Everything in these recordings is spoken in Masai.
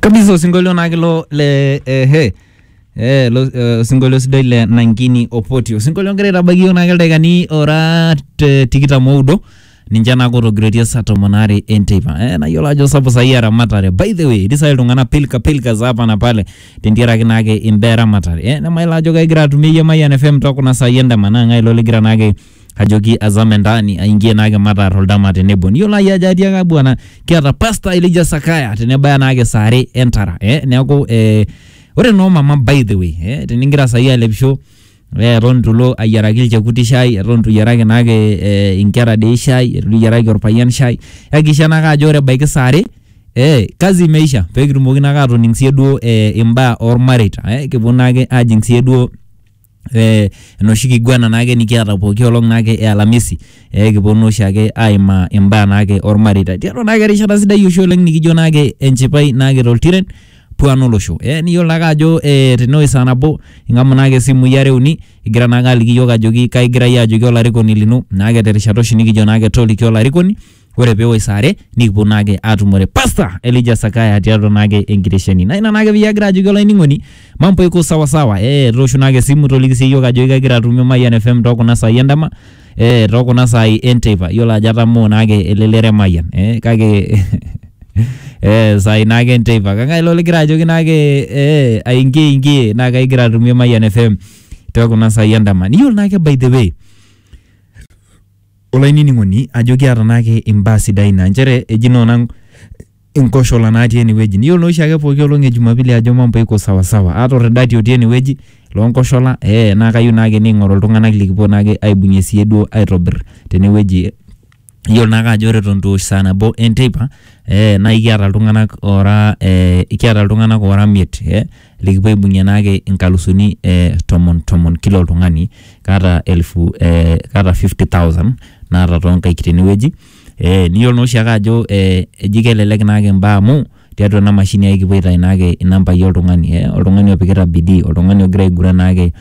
kabisa osinkolio naa kilo le eh, he Eh, lo, eh, osinkolio sidai le nankini opoti osinkolio ngira aitabaiki yiok naake ildaikani ora te- tikitam oudo ninche naa kotogiroitie saa tomon aare enteipa eh, nayiolo ajo sapuk saai eramatare by the way etii saai iltung'anak pilka pilka za hapa na pale tentiaraki naake imbaa eramatare eh, nemayiolo ajo kegira atumie iyie Mayian FM tokuna saai endama naa ng'ae ilo ligira naake ajoki azame ndani aingie naake mataar oldama tenebo niyiolo naaji ajo atii ake bwana kiata pasta Elijah Sakaya tenebaya naake saa are entara eh, neeku eh, ore noo mama by the way eh, tenigira saai alepisho eh, eton itu ilo ayiaraki ilchekuti shai eton itu iyiaraki naake eh, inkera dei shai eton itu iyiaraki orpayian shai yakikisha naake ajo ore ebaiki saa are Eh, kazi imeisha pekitumoki naake atoning sie duo eh, imbaa ormareita eh, kipuo naake ajing sie duo eh, enoshi kiguana naake nikiata pooki olong naake e alamisi ekiponu oshiake aimaa imbaa naake ormareita tiatua naake erishata sidai oshi oleng nikijo naake enchipai naake toltiren puan olosho eh, niyiolo naake ajo eh, tenewoi saa nabo ing'amu naake isimui are uni igira naake aliki iyiok ajoki kaigira iyie ajoki olarikoni lino naake terishata oshi nikijo naake toliki olarikoni ore peewoi saa are nikipuo naake aatumore Pastor Elijah Sakaya tiatua naake enkitesheni. Naa ina naake peyie agira ajoki olainining'oni mambo iko sawa sawa. Ee toosho naake esimu toliki sii iyiok ajoki kegira atumie Mayian FM too kuna saai endama ee too kuna saai enteipa. Iyiolo ajo atamoo naake elelero e Mayian ee kake ee saai naake enteipa. Kang'ai ilo ligira ajoki naake ee aingie ingie naa kaigira atumie Mayian FM too kuna saai endama. Niyiolo naake by the way Olainining'oni ajo kiata naake imbaa sidain naa nchere eji naa onang' inkoshola natii enewueji. Niyiolo naa oshiake pooki olong' e jumapili ajo mambo iko sawa sawa. Aata olrridati otii enewueji loonkoshola ee naa kayieu naake niking'oru iltung'anak likipuo naake aibung'ie siyie duo aitobirr tenewueji. Iyiolo naake ajo ore eton eitu eosh saa nabo enteipa ee naakiata iltung'anak oora ee kiata iltung'anak oora imiet ee. likipuoibung'ie naake inkalusuni eh, tomon tomon kila oltung'ani kaata elfu eh, kaata 50000 naata toonkaik tenewueji eh, niyiolo naa oshiake ajo eh, eji kelelek naake imbaa amu tiatua ena mashini ai kipuo aitai naake inambai oltung'ani eh, oltung'ani opikita bidii oltung'ani ogira aiguran naake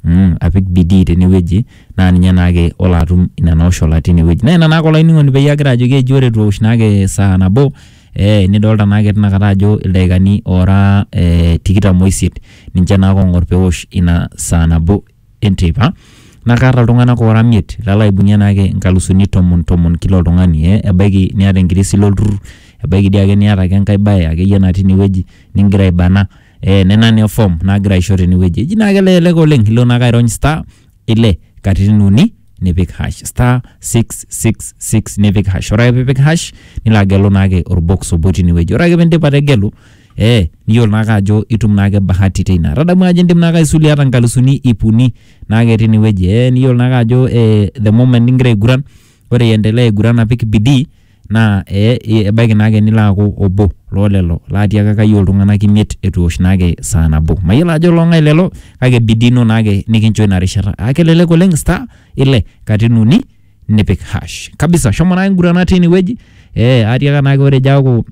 mm, apik bidii tenewueji naa ninye naake olo atum nena oshola tinewueji naa ina naake olainining'oni peyie agira ajoki eji ore etu ewosh naake saa nabo Eh, nidolta naake tinakata ajo ildaikani ora eh, tikitam oisiet ninche naake ong'or pewosh ina saa nabo enteipa naa kaata iltung'anak ora miet lalo aibung'ie naake inkalusuni tomon tomon kila oltung'ani eh, ebaiki niata enkirisi ilo turrur ebaiki dii ake niata ake enkae baye akeyie natii inewueji ningira aibana eh, nena naa e form nagira aisho tenewueji eji naake elelek oleng ilo naake airony star ile katitin uni nipik hash star 666 nipik hash ore ake piipik hash nilo agelu naake orbox obo tinewueji ore ake piindip ategelu eh niyiolo naake ajo itum naake bahati teina tadamu ajo indim naake aisulie ata nkalusuni ip uni naake tinewueji eh niyiolo naake ajo eh the moment ningira aiguran ore iendelea aiguran apik bidii naa ee ebaiki naake nilo aaku obo loo lelo laatiaka kayie oltung'anak imiet eitu eosh naake saa nabo. Mayiolo ajo loong'ae lelo kake bidii ino naake nikincho ina rishata. Aa kelelek oleng star ile katitin uni nipik hash kabisa. Shomo naake ngurana tine wueji ee aatiaka naake ore ejo aaku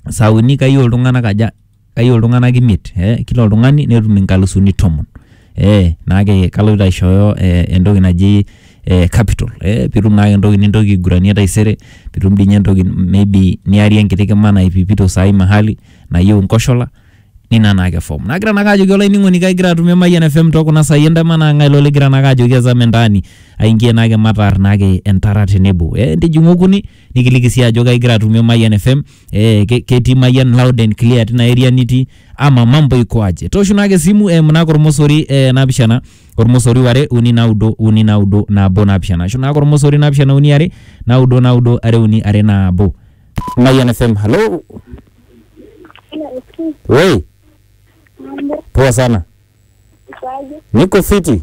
saa uni kayie oltung'anak aja. kayieu iltung'anak imiet eh, kila oltung'ani netum inkalusuni tomon eh, naake kaloito aishooyo eh, entoki naji eh, capital eh, pitum naake entoki nintoki aiguranie taisere pitum dinye entoki maybe niarie enkiti kima naipipito saai mahali nayieu nkoshola nina naake form nagira naake ajoki olainining'oni kagira atumie Mayian FM tokuna saai endama naa ng'ae logira naake ajoki azame ndani aingie naake mataar naake entara tenebo eh, ntijing'u okuni nikiliki sii ajo kaigira atumie Mayian FM eh, ke- ketii Mayian loud and clear tina area nitii ama mambo iko aje tooshu naake esimu eh, mnako ormosori eh, naapishana ormosori ware uni naudo uni naudo nabo naapishana ashu naake ormosori naapishana uni are naudo naudo are uni are nabo Mayian FM halo wei poa sana niko fiti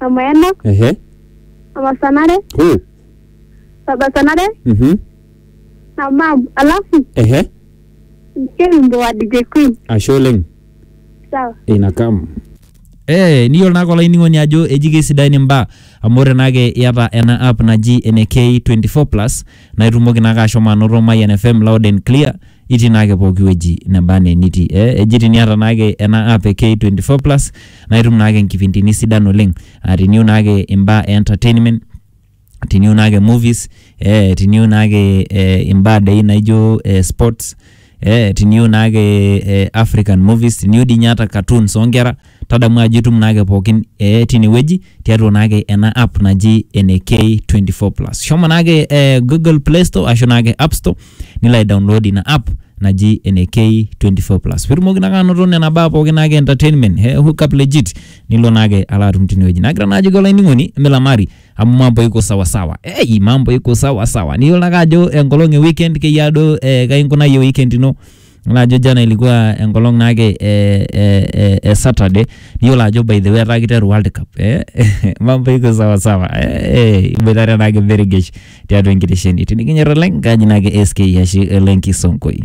Amayanok, ehe Amasanare, huu Sabasanare, mhm na Mam. Alafu ehe msikie wimbo wa DJ Queen. ashe oleng Sawa. inakam Eh, niyiolo naake olainining'oni ajo eji keisidain imbaa amu ore naake iata ena app naji ene K24 plus naa itumoki naake ashomo anoto Mayian FM loud and clear itii naake pooki wueji neba anaa enitii eh, eji tiniata naake ena app e K24 plus naa itum naake nkipindini sidan oleng aa tiniu naake imbaa e entertainment tiniu naake movies eh, tiniu naake eh, imbaa dei naijo eh, sports eh, tiniyieu naake eh, african movies tiniyieu dii ninye ata cartoons oonkera tadamu ajo itum naake pookin eh, tinewueji tiatua naake ena app naji ene k24 plus shomo naake eh, google play store ashu naake app store nilo aidownload ina app naji ene k24 plus pitumoki naake anoto nena baa pookin naake entertainment eh, hookup legit nilo naake alo atum tinewueji nagira naajoki olainining'oni milamari amu mambo iko sawasawa hey, mambo iko sawasawa niyiolo ake ajo enkolong e weekend keyia duo eh, kainkunayie weekend ino Yiolo ajo jana ilikuwa enkolong naake eh, eh, eh, eh, saturday niyiolo ajo by the way etaa kiteru world cup eh? mambo iko sawasawa eh, eh, iboitare naake beregesh tiatua enkitesheni tinikinyor oleng kaji naake sk yashi olenkisongoi